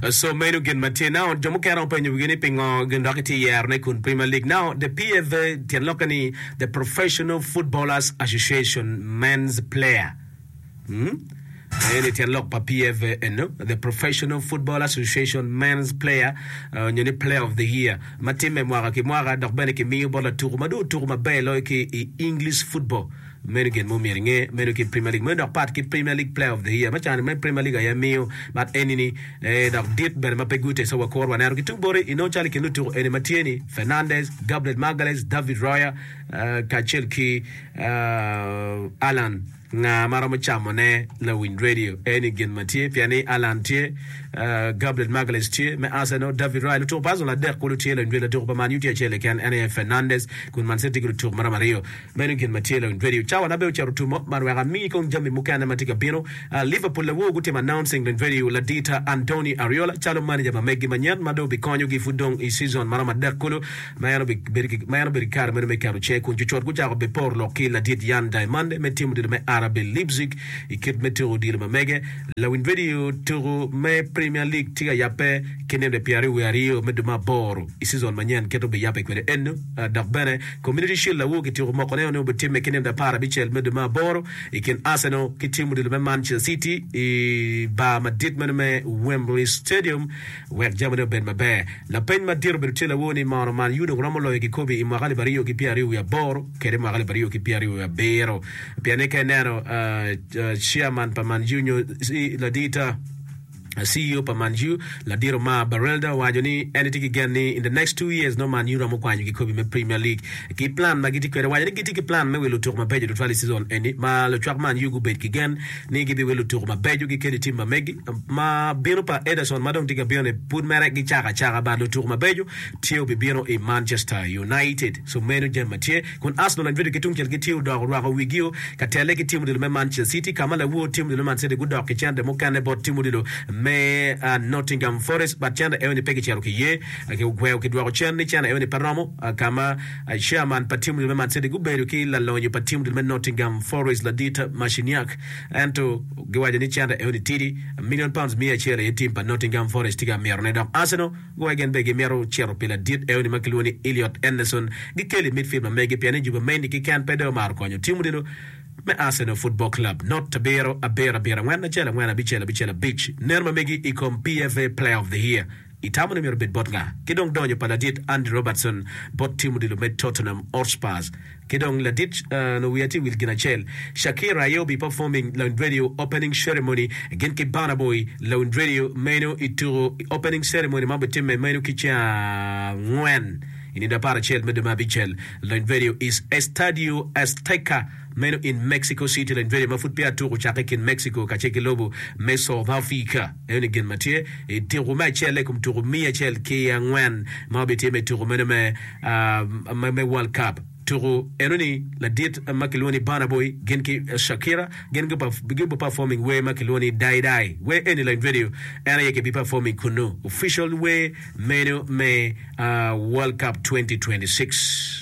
Oso meno gin ma tye. Now, jo mukene romo penyo wigi ni pingo gin dok itye yero ne kun Premier League. Now, the PFA, tyen lokke ni the Professional Footballers Association Men's Player. Hmm? Eni tyen lok pa PFA eno, the Professional Football Association Men's Player uh, nyo ni Player of the Year ma timme mwaka ki mwaka dok bene kimiyo bot latuku ma dong otuku maber loyo ki i English football. Meno gin ma omyero inge, meno kit Premier League meno dok pat ki Premier League Player of the Year ma can ma Premier League aye miyo but eni ni ee dok dit bene ma pe gute so wakuru waneno ki tung boti inongo calo i kin lutuku eni ma tye ni Fernandes, Gabriel Magalhaes, David Raya kacel ki Haaland nga ma romo camo ne lawiny radio eni gin ma tye pien ni Haaland tye, Gabriel Magalhaes tye me Arsenal, David Raya lutuku pa Arsenal adek kulu tye lawiny radio, latuku pa Man Utd acel keken en aye Fernandes kun Man City tye ki lutuku ma romo aryo. Meno gin macelo in radio cawa na bene ocito tumo man wek amiyi kong jami mukene matye ka bino. Liverpool lewu gutimo announcing dong radio ladita Andoni Ariola calo manager ma megi manyen ma dong bikonyo gi pud dong i season maromo adek kulu ma en obedo ki kare meno me keto cinge kun cucot gucako be poro lok ki ladit Yan Diamande me tim odilo me RB Leipzig i kit me tuku odilo ma mege. Lawiny radio tuku me Premier League tye ka yabbe ki nino pyeraryo wiye aryo me dwe me aboro i season manyen kit obiyabbe kwede eno dok bene Community Shield awobi kityeko mokone onongo obitimme ki nino apar abicel me dwe me aboro i kin Arsenal ki tim odilo me Manchester City i bar madit meno me Wembley Stadium wek jamine obed maber. Lapeny madit obedo tye lawo ni mono Man U dong romo loyo kikobi i mwaka alip aryo ki pyera aryo wiye aboro kede mwaka alip aryo ki pyera aryo wiye abiro pien ni ka ineno Chairman pa Man U nyo Ladita Ceo pa Man U, ladit Omar Berelder owaco ni en tye ki gen ni in the next two years nongo Man U romo kwanyo kikobi me Premier League ki plan ma gitye kwede. Owaco ni gitye ki plan me wilo lutuku mabeco tutwal i season eni ma lucwak Man U gubedo ki gen ni gibiwilo lutuku mabeco ki keni tim ma megi ma bino pa Ederson ma dong tye ka bino ni pud mere gicako acaka but lutuku mabeco tye obibino i Manchester United so meno jami ma tye kun Arsenal ma bedo ki tungcel ki Theo dok orwako wigio ka telle ki tim odilo me Manchester City, ka ma lawo tim odilo me Man City gudok ki cente mukene bot tim odilo me Nottingham Forest but cente eno ni pe kicito kiye ki ogweo kidwoko cen ni cene eno ni pe romo ka ma chairman pa tim odilo me Man City gubedo ki lalonyo pa tim odilo me Nottingham Forest ladit Marciniak ento giwaco ni cente eno ni tidi million pounds miya acel aye tim pa Nottingham Forest tye ka mito ne dok Arsenal Goya gin bene gimito cito pi ladit eoni ma kilwongo ni Elliot Anderson. Gikele i midfield ma megi pien ni juba meni keken pe dong omaro konyo tim odilo me Arsenal Football Club. Not abiro, abiro, abiro, angwen, acel, angwen, abicel, abicel, abic. Neno ma megi i kom PFA Player of the Year itamo ni myero obed bot nga? Ki dong donyo pa ladit Andy Robertson bot tim odilo me Tottenham Hotspurs. Ki dong latic nongo wiya tye wil gin acel, Shakira aye obi performing Lounge Radio opening ceremony gin ki Burna Boy, Lounge Radio meno i tuku i opening ceremony ma obitimme meno ki ceng angwen i nindo apar acel me dwe me abicel, Lounge Radio is Estadio Azteca meno in Mexico City, Lounge Radio ma pud peya tuku ocakke i kin Mexico kacel ki lobo me South Africa. Eno ni gin ma tye i tuku me acel i kom tuku miya acel ki angwen ma obitye me tuku meno me me World Cup. Tuku eno ni ladit ma kilwongo ni Burna Boy gin ki Shakira gin gubi performing wer ma kilwongo ni Dai Dai. Wer eni lony radio en aye kibi performing kunnu official wer meno me World Cup twenty twenty six.